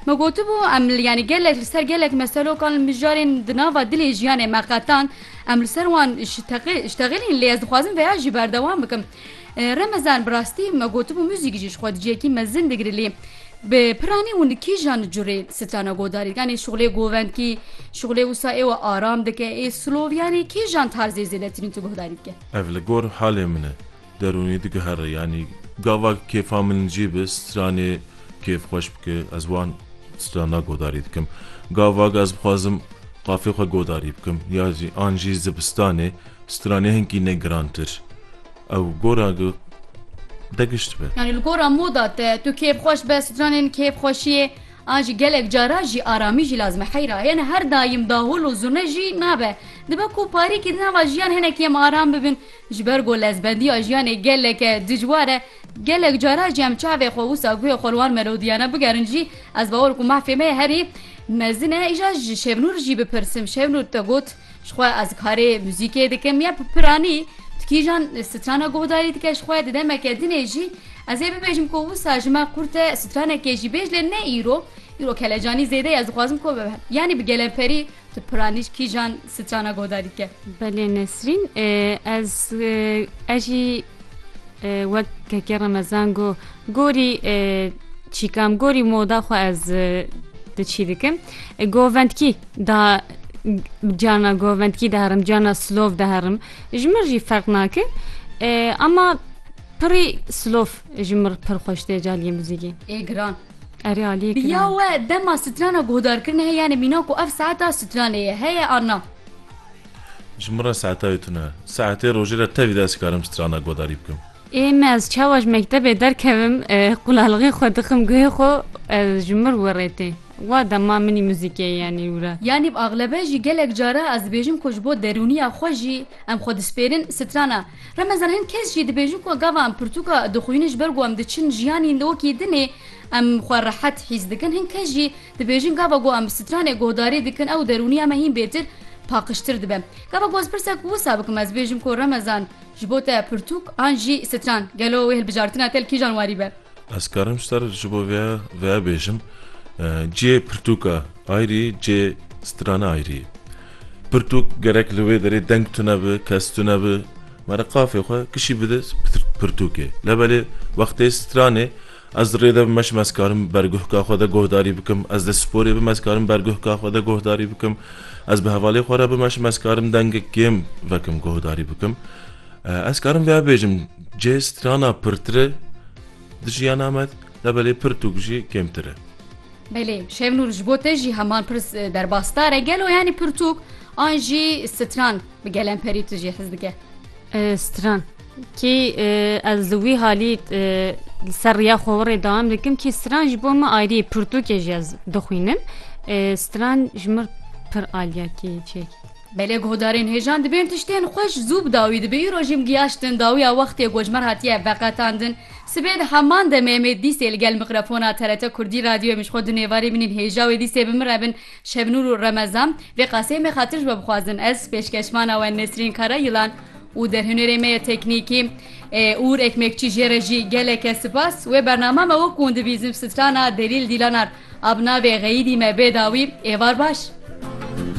Me gotibû em yanî gelek li ser gelek meselokan li mijarên di nava dilê jiyanê me qetan em li ser wan şteqîlîn lê ez dixwazim veya jî berdewam bikim. Remezan bi rastî me gotibû muzîk jî ji xwe dijiyekî mezin digire lê bi piranî û li kîjan curê strana godarî dike yanî şixulê govendkî şixulê wisa ê we aram dike ê slow yanî kîjan tarzê zêdetirîn tu guhdarî dike? Ev li gor halê min e. Derûnî digihere yanî gava kêfa min jî bi stranê kêf xweş bike ez wan strana godarî dikim. Gava ez bixwazim qafê xwe godarî bikim ya jî an jî zivistanê stranê hinkî ne girantir ew gora gu de gişt be. Yanî li gora moda te tu kêf xweş be stranên kêf xweşiyê an jî gelek cara jî aramî jî lazim e heyra yene her dayim dahul û zurne jî nabe dibe ku parîkî di nava jiyan hinekî em aram bibin. Ji ber ku lezbendiya jiyanê geleke dijwar e, gelek caran jî em çavê xwe wisa guhê xwe li wan melodiyane bigerin jî, ez bawer ku mahfê me herî mezin e. Îja ji Şevnûr jî bipirsim, Şevnûr te got ji xwe ez karê muzîkê dikim ya bi piranî di kîjan strana guhdarî dike ji xwe di demeke dinê jî ez ê bibêjim ku wisa ji me qurt e stranekê jî bêj lê ne îro, îro kelecanî zêde ye ez dixwazim ku yanî bi gelemperî Tu piranî kîjan sicana godarî dike? Belê Nesrîn ez ez jî wek kekê remezan got gorî çîkam gorî moda xwe ez di çî dikim govendkî da cana govendkî deherim cana slov deherim ji min jî ferq nake ema pirî slov ji min pir xweş tê caliyê muzîkê ê giran Erê aliyê kira. Ya we dema strana guhdarkirine he yani mîna ku ev saeta stranê ye heye an na? Ji min re saeta wê tune. Saetê rojê re tevî de ez karim strana guhdarî bikim. Ê me ez çawa ji mektebê derkevim qulalixê xwe dixim guhê xwe ez ji mir we rê tê. Wa dema minî muzîkê yani wî re. Yanî bi axlebe jî gelek cara ez dibêjim ku ji bo derûniya xwe jî em xwe dispêrin strana Remezan hin kes jî dibêjin ku gava em pirtûka dixwînin ji ber ku em diçin jiyanî lokî din ê em xwe rehet hîs dikin. Hin kes jî dibêjin gava ku em bi stranê guhdarî dikin ew derûniya me hîn bêtir paqijtir dibe. Gava ku ez pirsek wisa bikim ez bêjim ku Remezan ji bo te pirtûk an jî stran? Gelo wê hilbijartina kel kîjan warî be? Ez karim ser ji bo vê vê bêjim cihê pirtûka ayrî cihê strana ayrî ye. Pirtûk gerek li wê derê deng tune bi, kes tune bi, mere qafê xwe kişî bide pirtûkê. Lebelê wextê stranê ez rê de bim meşim ez karim berguhka xwe de guhdarî bikim, ez dê sporê bim ez karim berguhka xwe de guhdarî bikim, ez bi hevalê xwe re bimeşim ez karim dengek kêm vekim guhdarî bikim. Ez karim vêya bêjim, cê strana pirtir e di jiyana me de belê pir tûk jî kêmtir e. Belê, Şevnûr ji bo te jî heman pirs derbasdar e, gelo yanî pirtûk an jî stran bi gelemperî tu jê hez bike? Stran, kî ez li wî halî li ser riya xwe wirê dawam dikim kî stran ji bo me ayrî ye, pirtûkê jî ez dixwînim. Stran ji mir pir aliya kî çêkî. Belê guhdarên hêjan dibên tiştên xweş zû bi dawî dibe îro jî mgiyaştin dawiya wextê gojmer hatiye veqetandin sibê di heman demê mê dîsê li gel mikrafona TRT Kurdî radyoyê min ji xwe du nêvarî binîn hêja wê dîsê bi min re bin Şebnûr û Remezan vê qaseyê mê xatir ji we bixwazin ez pêşkeşmana we Nesrîn Karayîlan û derhunêrê me yê teknîkî Ûr Ekmekçî jê re jî geleke sipas wê bernama me wek hûn dibîzin strana Delîl Dîlanar a bi navê Xeyîdî me bê dawî êvar baş.